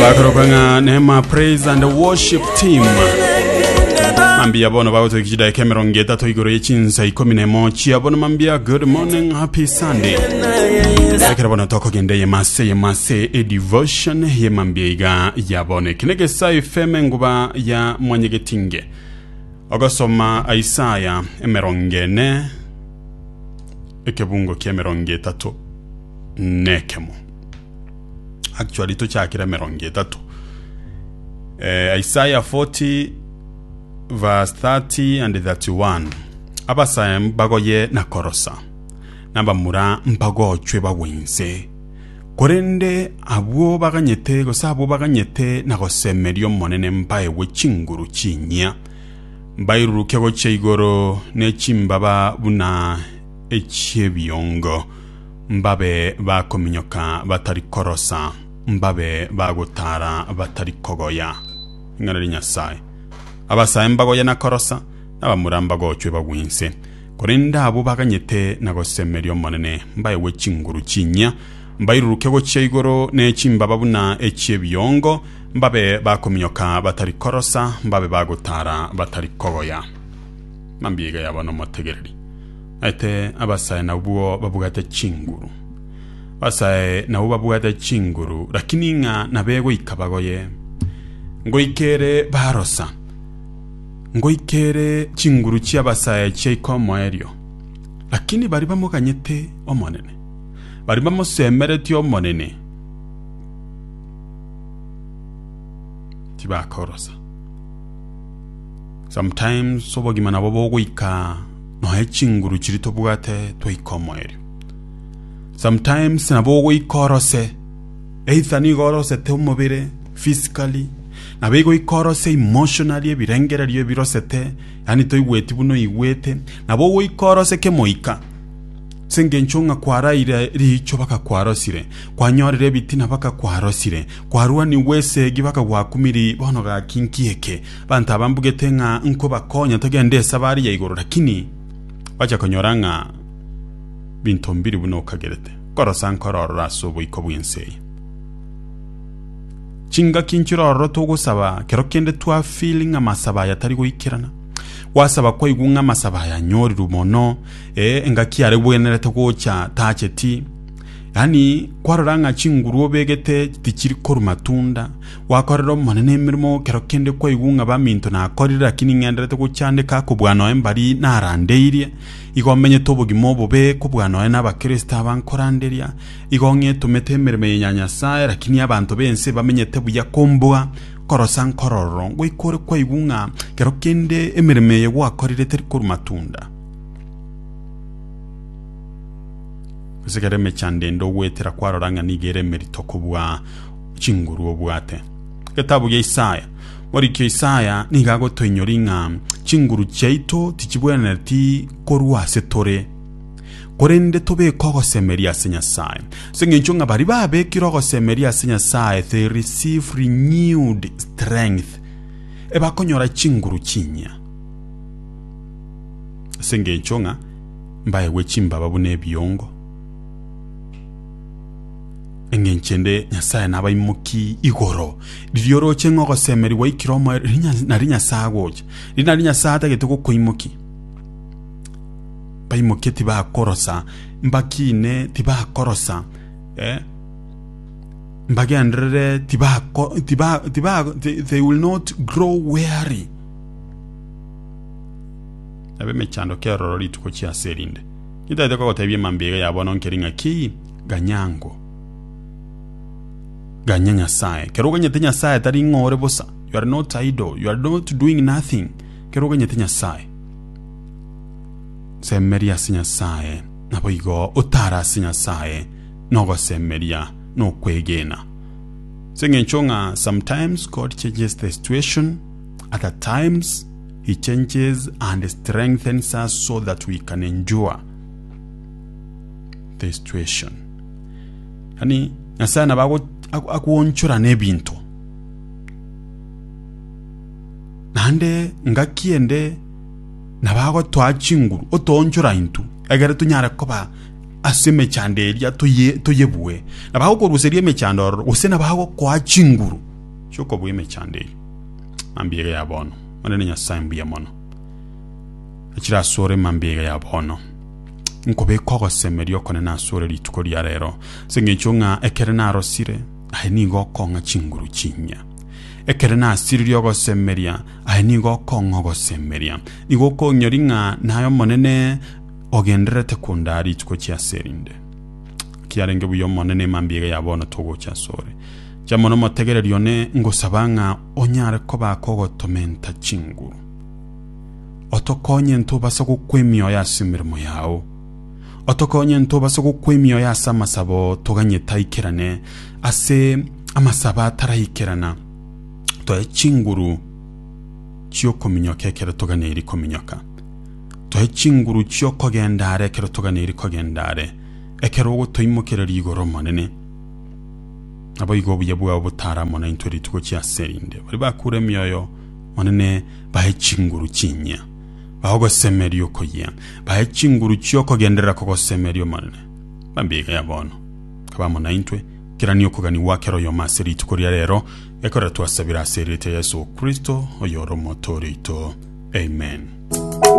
bakoroka ng'a nema praise and worship team mambia bono bagotweka chidaika emerongo etato igoro ye chinsa ikomi na emo chia bono mambia good morning happy sunday ekero bono tokogenda ye mase ye mase e devotion ye mambia iga ya bono ekine gesa fm enguba ya mwanyegetinge ogasoma isaya emerongo ene ekebungo kia emerongo etato nekemo actually tochakire emerongo etato eh, isaya 40 verse 30 and 31 abasaya mbagoye na korosa nabamura mbagochwe bagwe inse korende abwo baganyete gose abwo baganyete na gosemeria omonene mbaegwe chinguru chinyia mbairuruke gochia igoro ne chimbaba buna echiebiongo Mbabe bakominyoka batari korosa, mbabe bagotara batari kogoya. Ring'ana ria Nyasae. Abasae mbagoye na korosa, na abamura mbagochwe bagwinse. Korende abwo baganyete na gosemeria Omonene mbaegwe chinguru chinyia, mbairuruke gochia igoro ne chimbaba buna echi'ebiongo, mbabe bakominyoka batari korosa, mbabe bagotara batari kogoya. Mambia iga yaba nomotegereri. Naete abasae nabwo babwate chinguru. Abasae nabwo babwate chinguru, rakini ng'a nabegoika bagoye. Ngoika ere barosa, ngoika ere chinguru chi'abasae chiaika omoerio. Rakini baria bamoganyete Omonene, baria bamosemeretie Omonene, tibakorosa. Sometimes obogima nabo bogoika noe chinguru chiri tobwate twaika omoerio sometimes nabo ogoika orose either nigo orosete omobere physically nabo igoika orose emotionally ebirengererio ebirosete yaani toigweti buna oigwete nabo ogoika orose kemoika ase engencho ng'a kwaraire riicho bakakwarosire kwanyorire ebitina bakakwarosire kwarwaniwe esegi bakagwakumiria bono gaki nki eke Abanto aba mbugete ng'a nkobakonya togende esaba aria igoro, lakini bacha konyora ng'a binto mbiri buna okagerete. Nkorosa nkore ororo ase oboiko bw'ense eye. Chingaki nchire ororo togosaba kero kende twa feel ng'a amasabo aya tari goikerana. Gwasaba kwaigwa ng'a amasabo aya anyorirwe mono, eh, engaki yaregwenerete gocha tacheti. Yaani kwarora ng'a chinguru obegete tichiri korwa matunda, Gwakorera Omonene emeremo kero kende kwaigwa ng'a baminto nakorire, lakini ng'enderete gochandeka kobua noe mbari narandeirie. Igo menyete obogima obobe kobua noe n'Abakristo aba nkoranderia. Igo ng'etomete emeremo eye ya Nyasae, lakini abanto b'ense bamenyete buya kombua. Korosa nkorororo, ngoika ore kwaigwa ng'a kero kende emeremo eye gwakorire teri korwa matunda. Gose kera emechando ende ogoetera kwarora ng'a nigo ere emerito kobua chinguru obwate. Getabu gia Isaya. Moriki Isaya nigo agotoinyoria ng'a chinguru chiaito tichibwenereti korwa ase tore, korende tobeke ogosemeria ase Nyasae. Ase eng'encho ng'a baria babekire ogosemeria ase Nyasae they receive renewed strength, ebakonyora chinguru chinyia. Ase eng'encho ng'a mbaegwe chimbaba buna ebiongo. Engencho ende Nyasae nabaimoki igoro, riria oroche ng'a ogosemerigwa aikire omoerio, riria nario Nyasae agocha, riria nario Nyasae atagete gokoimokia. Baimoke tibakorosa, mbakine tibakorosa, eh, mbagenderere tibako tiba tiba they will not grow weary. Ab'emechando keroro rituko chiase erinde, nintagete kogotebia mambia iga ya bono nkeri ng'a ki? ganyango ganya Nyasaye. Ekero oganyete Nyasaye tari ng'a ore bosa, you are not idle, you are not doing nothing. Ekero oganyete Nyasaye, semeria ase Nyasaye, naboigo otare ase Nyasaye na ogosemeria na okwegena. Ase eng'encho ng'a sometimes God changes the situation, other times he changes and strengthens us so that we can endure. the situation yani nyasaye nabo ago- ago- agoonchora n'ebinto naende ngaki ende nabo agotoa chinguru otoonchora intwe egere tonyare koba ase emechando eria toye toyebue nabo agokoruseria emechando ororo gose nabo agokoa chinguru chiokobua emechando eria mambia ya bono omonene nyasaye mbuya mono chire asore mambia iga ya bono. nkobeka ogosemeria okonene ase ore rituko ria rero, ase engencho ng'a ekere narosire, aye nigo okong'a chinguru chinyia. Ekere nasiririe ogosemeria, aye nigo okong'a ogosemeria. Nigo okonyori ng'a naye Omonene ogendererete kondaa rituko chia ase erinde. Kiarenge buya Omonene, emambia eye ya bono togocha ase ore. Inche amo nomotegereria one ngosaba ng'a onyare koba akogotomenta chinguru. Otokonye ntobase gokwa emioyo ase emeremo yao. Otokonye ntobase gokwa emioyo ase amasabo toganyete aikerane, ase amasabo ataraikerana toe chinguru chi'okominyoka ekero toganeiri kominyoka. Toe chinguru chi'okogenda are ekero toganeiri kogenda are, ekero ogotoimokereria igoro Omonene. Naboigo obuya bwao botare amo naintwe rituko chi'aserinde. Baria bakure emioyo, Omonene, bae chinguru chinyia, bae ogosemeria okoyia, bae chinguru chi'okogenderera kogosemeria Omonene. Bambiga ya bono, nkabamo naintwe, kerania okogania gwa kera oyomo ase rituko ria reero, ekorera twasabire ase erieta ya Yeso Kristo, oyore Omotoori oito. Amen.